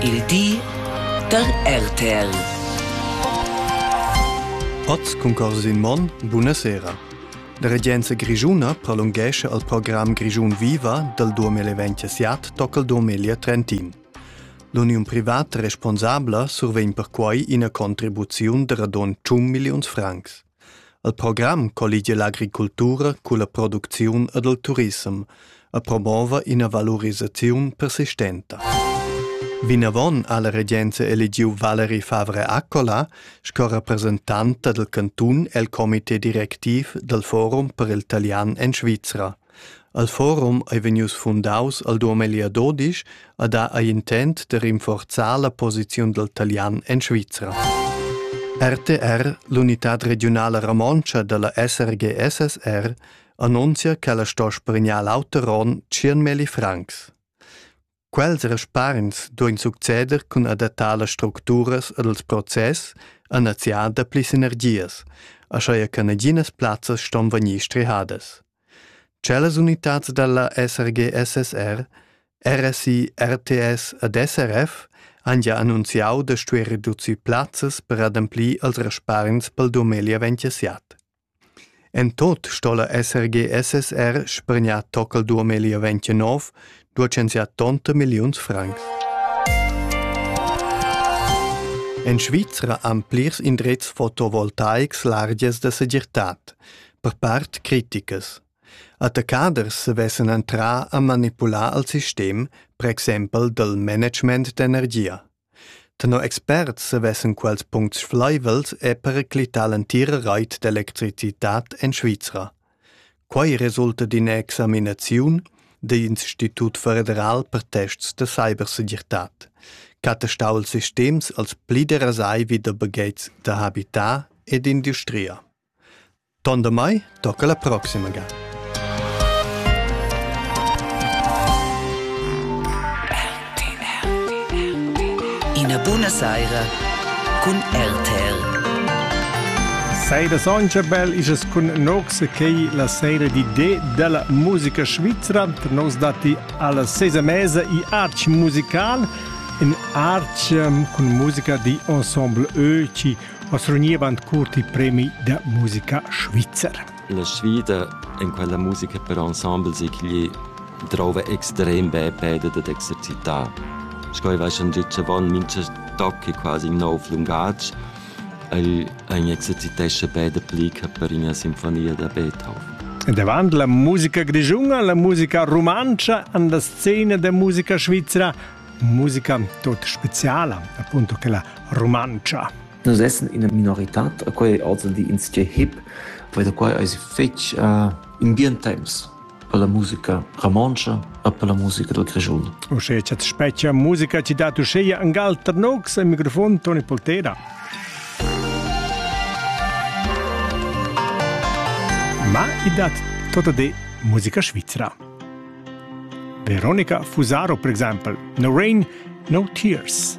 Il di da RTL. Oz cun cors in mon, buna sera. La regenza grischuna prolunghesce al program Grischun Viva dal 2027 tocca il 2030. L'uniun privat responsabla survegn perquai ina contribuziun da radon 100 milliuns francs. El program colligia l'agricultura culla producziun ed il turissem e promova ina valurisaziun persistenta. Vinavon ha la regenza eligiu Valerie Favre Accola sco representanta del cantun el comité directiv del Forum per il talian en Svizra. El forum ei vegnius fundaus al duamilli ad Odisch a dar igl intent de rinforzar la posiziun dal talian en Svizra. RTR, l'unitad regiunala romontscha dalla SRGSSR, annunzia che la sto spregnar l'auter onn 100.000 francs. Quels respargns duein succeder cun adattar las structuras ed els process a neziar dapli sinergias, aschia che naginas plazzas ston vegnir strihadas. Cellas unitads dalla SRG-SSR, RSI, RTS ed SRF han gia annunziau da stuer reducir plazzas per ademplir als respargns pel dumegl avantiasiat. En tut sto'la esser GSSR spargnà tocal 2029, duechensià tonta milliuns francs. En Svizra han plirs indrezs fotovoltaics largias da segirtad, per part criticas. Attaccaders savessan entrar a manipular al sistem, per exempel dal management d'energia. Tenor experts savessan quels puncts flaivels er periclitar l'entira rait d'electricitad en Svizra. Quai resulta d'ina examinaziun dell'Institut federal per tests da cybersegirtad, ch'attestà ils sistems als pli derasai vi da baghetgs da habitar ed industria. Ton damai tocca la proxima ga. Ina buna saira cun RTL. Seide soncha bel isas cun nox quei la seire di D della musica svizzera tra nos dati alla sesa mesa i arch musical in arch um, cun musica di ensemble E ci Oz rugniva ant curt il premi da musica svizzer. La sfida en quella musica per ensembles è ch'igl drova extrem be peda dad exercitar. Sco ei va schon gitg avon mincha toc è quasi in nov lungatg. El ein exercitesce beda plica per ina sinfonia da Beethoven. Davant la musica grischuna, la musica rumantscha, an la scena da musica svizra musica tot speciala, appunto che la romancia. Nus essen in minorità, quei è also die ins je hip, weil da quai eis fetg uh, in bien temps per la musica romancia e per la musica dal Grischun. Usche chat specchia musica ti dat usche an gal Tarnox al microfon Toni Poltera. Ma i dat tota de musica svizzera. Veronica Fusaro per exempel, No Rain, No Tears.